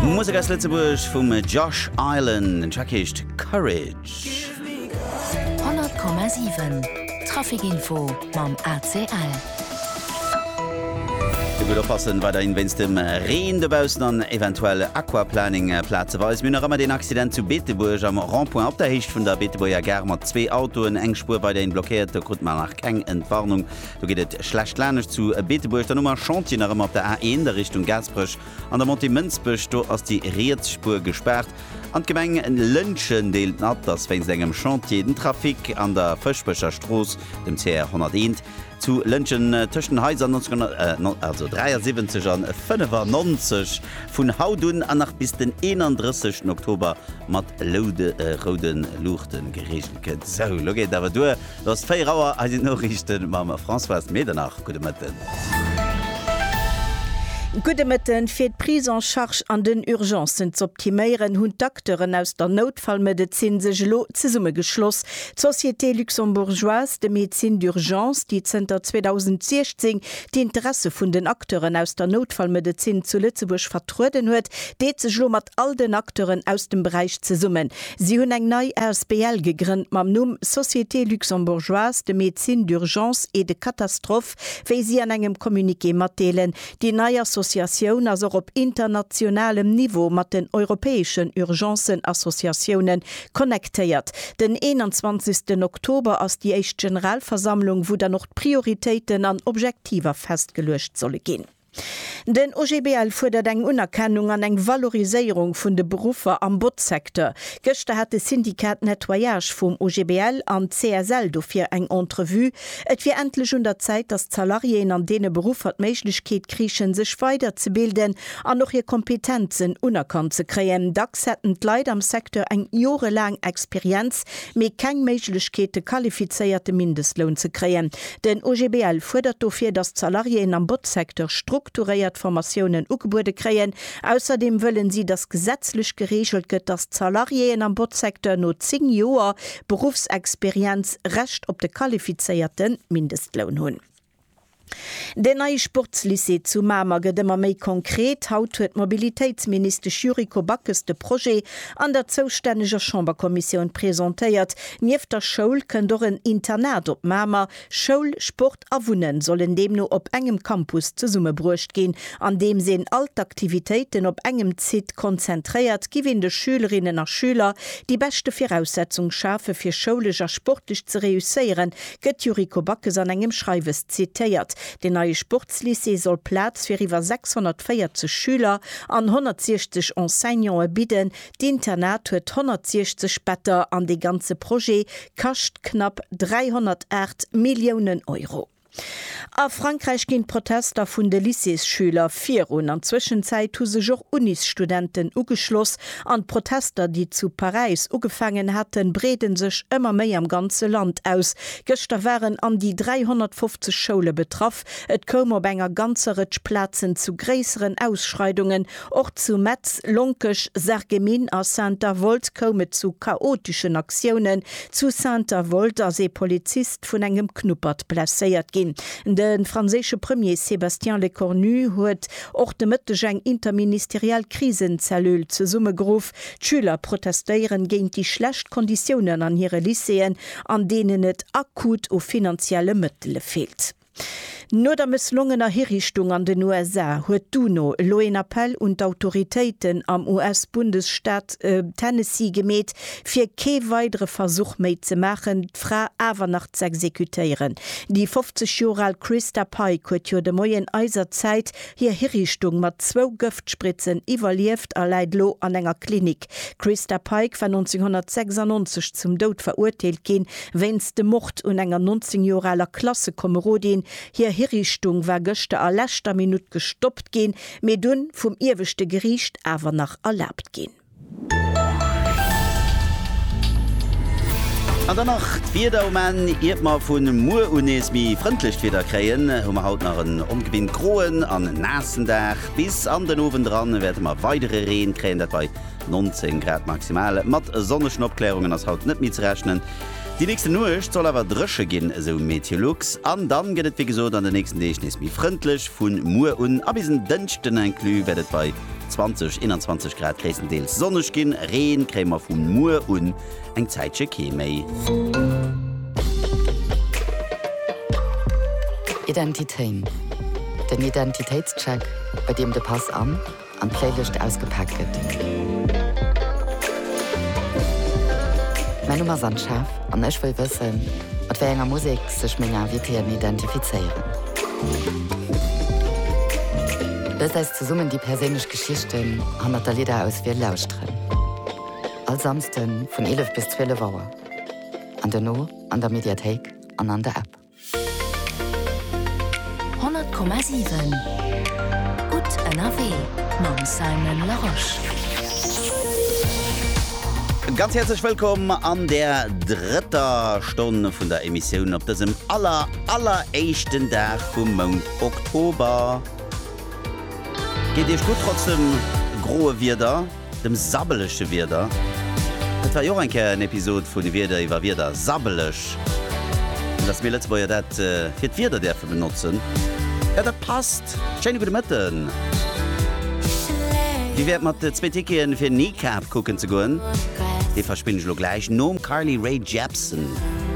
Musek aus Lëtzebuerg vum Josh Island, den Track heescht Courage. 100,7 Trafikinfo mam ACL. Gutt oppassen weiderhin wéinst dem Reen dobaussen an eventuell Aquaplaning plazeweis. Mir hunn nach ëmmer deen Accident zu Beetebuerg am Rond-point op der Héicht vun der Beetebuerger Gare mat zwee Autoen, eng Spuer weiderhin blockéiert. Do krut mer nach keng Entwarnung. Do geet et schlecht lanescht zu Beetebuerg, dann hu mer Chantier nach ëmmer op der A1 a Richtung Gaasperech an der Montée Mënsbech. Do ass déi riets Spuer gespaart. An d'Gemeng Lëntgen deelt mat, dass wéinst engem Chantier den Trafic an der Fëschbecher Strooss, dem CR 101, zu Lëntgen tëscht den Haiser 1973 an 95 vun haut un an nach bis den 31 Oktober mat roude Luuchte gereegelt gëtt. Sou, elo geet et awer duer. Et ass 4 Auer, hei sinn d'Noriichten mam Françoise Medernach. Gudde Mëtten. Gudde Mëtten. Fir d'Prise en charge an den Urgencen z'optiméieren, hunn d'Acteuren aus der Noutfallmedezin sech elo zesummegeschloss, d'Société luxembourgeoise de médecine d'urgence, déi zënter 2016 d'Interesse vun den Acteuren aus der Noutfallmedezin zu Lëtzebuerg vertrueden huet, deet sech elo mat all den Acteuren aus dem Beräich zesummen. Si hunn eng nei Asbl gegrënnt mam Numm Société Luxembourgeoise de Médecine d'Urgence et de Catastrophe, wéi si an engem Communiqué matdeelen. Déi nei Associatioun ass och op internationalem Niveau mat den europäeschen Urgencen-Associatiounen connectéiert. Den 21 Oktober ass déi éischt Generalversammlung, wou dann och d'Prioritéiten an Objektiver festgeluecht solle ginn. Den OGBL fuerdert eng Unerkennung an eng Valoriséierung vun de Beruffer am Botzsecteur. Gëschter hat de Syndicat Nettoyage vum OGBL an d'CSL dofir eng Entrevue. Et wier endlech un der Zäit, datt d'Salariéen an deene Beruffer d'Méiglechkeet kriichen, sech weider ze bilden an och hir Kompetenzen unerkannt ze kréien. Dacks hätten d'Leit am Secteur eng jorelaang Experienz, mee keng Méiglechkeet, de qualifizéierte Mindestloun ze kréien. Den OGBL fuerdert dofir, datt d'Salariéen am Botzsecteur strukturéiert Formatiounen ugebuede kréien. Ausserdeem wëllen si, datt gesetzlech gereegelt gëtt, datt d'Salariéen am Botzsecteur no 10 Joer Beruffsexperienz Recht op de qualifizéierte Mindestloun hunn. Den neie Sportslycée zu Mamer gëtt ëmmer méi konkret. Haut huet d'Mobilitéitsministesch Yuriko Backes de Projet an der zoustänneger Chamberkommissioun presentéiert. Nieft der Schoul kënnt och en Internat op Mamer. Schoul, Sport a Wunnen sollen deemno op engem Campus zesummebruecht ginn. Andeems een all d'Aktivitéiten op engem Site konzentréiert, giff een de Schülerinnen a Schüler déi beschte Viraussetzung schafe fir schoulesch a sportlech ze reusséieren, gëtt d'Yuriko Backes an engem Schreiwes zitéiert. Den neie Sportslycée soll Plaz fir iwwer 640 Schüler an 160 Enseignante bidden, D'Internat huet 160 Better an dee ganze Projet kascht knapp 308 Milliounen Euro. A Frankräich ginn d'Protester vun de Lycéesschüler virun. An Zwëschenzäit hu sech och Unisstudenten ugeschloss an d'Protester, déi zu Paräis ugefaangen haten, breede sech ëmmer méi am ganze Land aus. Gëschter waren an déi 350 Schoule betraff. Stad. Et koum op enger ganzer Rëtsch Plazen zu gréisseren Ausschreidungen. Och zu Metz, Lonkech, Sarreguemines a Saint-Avold koum et zu chaoteschen Aktiounen. Zu Saint-Avold ass ee Polizist vun engem Knuppert blesséiert ginn. De franséische Premier Sébastien Lecornu huet och de Mëtteg eng interministeriell Krisenzellule zesummegeruff. D'Schüler protestéieren géint déi schlecht Konditiounen an hire Lycéeën an deenen et akut u finanzielle Mëttele feelt. No der mësslongener Hiriichtung an den USA huet d'UNO elo een Appell un d'Autoritéiten am US-Bundesstaat Tennessee gemeet, fir kee weidere Versuch méi ze maachen, d'Fra awer nach z'exekutéieren. Déi 50 Joer al Christa Pike huet jo de Moien eiser Zäit hir Hiriichtung mat zwou Gëftspritzen iwwerlieft a läit elo an enger Klinik. D'Christa Pike war 1996 zum Doud verurteelt ginn, wéinst dem Mord un enger 19 Joer aler Klassekomerodin. Hir Hiriichtung war gëschter a leschter Minutt gestoppt ginn, mee dunn vum ieweschte Geriicht awer nach erlaabt ginn. An dann nach d'Wieder um Enn. Iert mer vu muer un nees méi frëndlecht Wieder kréien, hu mer haut nach en ongebint groen an naassen Dag. Bis an den Owend eran wäerte mer weidere Reen kréien, dat bei 19 Grad maximal. Mat sonnegen Opkläerungen ass haut net méi ze rechnen. Déi nächste Nuecht soll awer dréche ginn, esou Meteolux. An dann gëtt et wéi gesot an den nächsten Deeg nees méi frëndlech. Vu muer un a bis en Dënschden inclus wäert et bei 20, 21 Grad gréisstendeels sonneg ginn. Reen kréie mer vu muer un. eng Zäitche kee méi. Identitéin, den Identitéitscheck, bei deem de Pass an an d'Playlëscht ausgepaakt gëtt. Mäin Numm ass Anne-Chef an ech wëll wëssen, mat wéi enger Musek sech meng Invitéen identifizéieren. Loost eis zesummen déi perséinlech Geschichten hannert der Lidder-Auswiel lauschteren. All Samsden vun 11 bis 12 Auer an dono an der Mediathéik an an der App. 100,7 Gutt ënnerwee mam Simon Larosche. Ganz häerzlech wëllkomm an der drëtter Stonn vun der Emissioun op dësem aller alleréischten Dag vum Mount Oktober. Geet Iech gutt trotz dem groe Wieder? Dem sabbeleche Wieder. Dat war jo och eng Kéier en Episod vun Wieder iwwer Wieder, sabbeleg. An dass mir Lëtzebuerger dat fir d'Wieder däerfe benotzen, jo dat passt. Schéine gudde Mëtten. Wéi wär et mat zwee Ticketen fir Kneecap kucken ze goen? Déi verspinn ech elo gläich nom Carly Rae Jepsen.